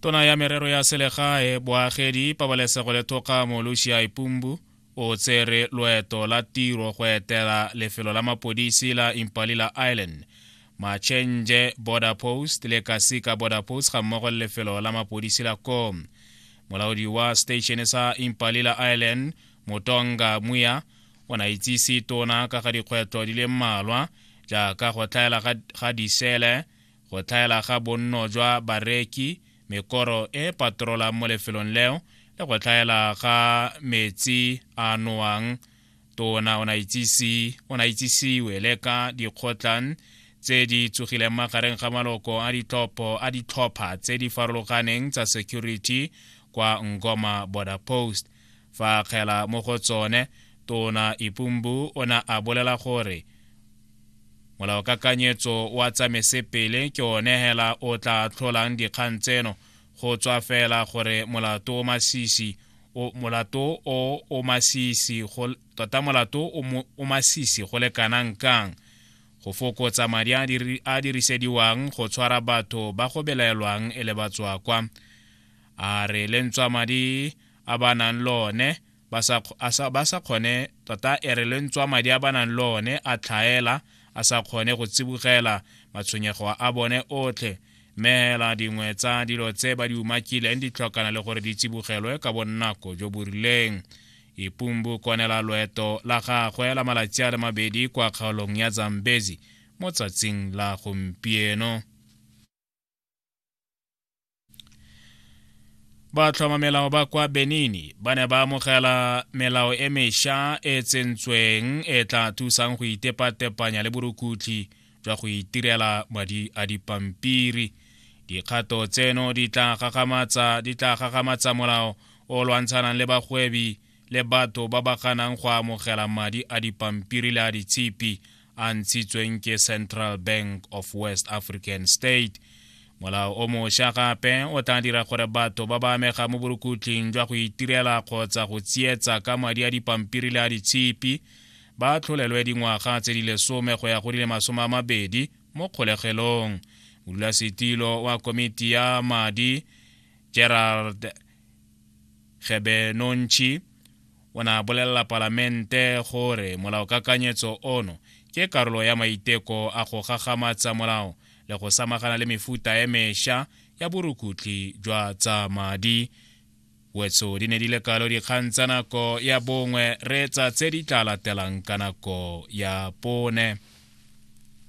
tona ya merero ya selegae boagedi pabalesego le thokgamo lucia ipumbu o tsere loeto la tiro go etela lefelo la mapodisi la impalila island machenje border post le kasika border post ga mmogo le lefelo la mapodisi la ko molaodi wa station sa impalila island motonga muya o na itsise tona ka ga dikgwetlho di le mmalwa jaaka go tlhaela ga disele Go tlhaela ga bonno jwa bareki, mekoro e e patrolang mo lefelong leo le go tlhaela ga metsi a nowang tona o na itsisiwe le ka dikgotlang tse di tsogileng magareng ga maloko a ditlhopho a ditlhopha tse di farologaneng tsa security kwa ngoma border post Fa akgela mo go tsone, Tona Ipumbu o ne a bolela gore molaokakanyetso wa tsamesepele ke one hela o tla tlholang dikgang tseno go tswa fela gore molato o masisi o molato o o masisi go tota molato o masisi go le kanang kang go fokotsa madi a dirisediwang go tshwara batho ba go belaelwang e le batswakwa a re le ntswamadi a ba nang le one ba sa kgone tota e re le ntswamadi a ba nang le one a tlhaela a sa kgone go tsibogela matshwenyego a bone otlhe mme hela dingwe tsa dilo tse ba di umakileng di tlhokana le gore di tsibogelwe ka bonako jo bo rileng ipumbu konela loeto la gagwe la malatsi a le mabedi kwa kgaolong ya zambezi mo tsatsing la gompieno ba tlhoma melao ba kwa benini ba ne ba amogela melao e mesha e tsentsweng e tla thusang go itepatepanya le borukutlhi jwa go itirela madi a dipampiri dikgato tseno di tla gagamatsa molao o lwantshanang le bagwebi le batho ba ba ganang go amogela madi a dipampiri le a ditshipi a ntshitsweng ke central bank of west african state molao o mošwa gape o tla dira gore batho ba ba amega mo borukhutlhing jwa go itirela kgotsa go tsietsa ka madi a dipampiri le a ditshipi ba tlholelwe dingwaga tse di lesome go ya go di le masome a mabedi mo kgolegelong modulasetilo wa komiti ya madi gerald Gebe Nontšhi o ne a bolelela Palamente gore molaokakanyetso ono ke karolo ya maiteko a go gagamatsa molao le go samagana le mefuta e mesha ya borukutlhi jwa tsa madi. Wetso di ne di le kalo dikgang tsa nako ya bongwe, reetsa tse di tla latelang ka nako ya bone.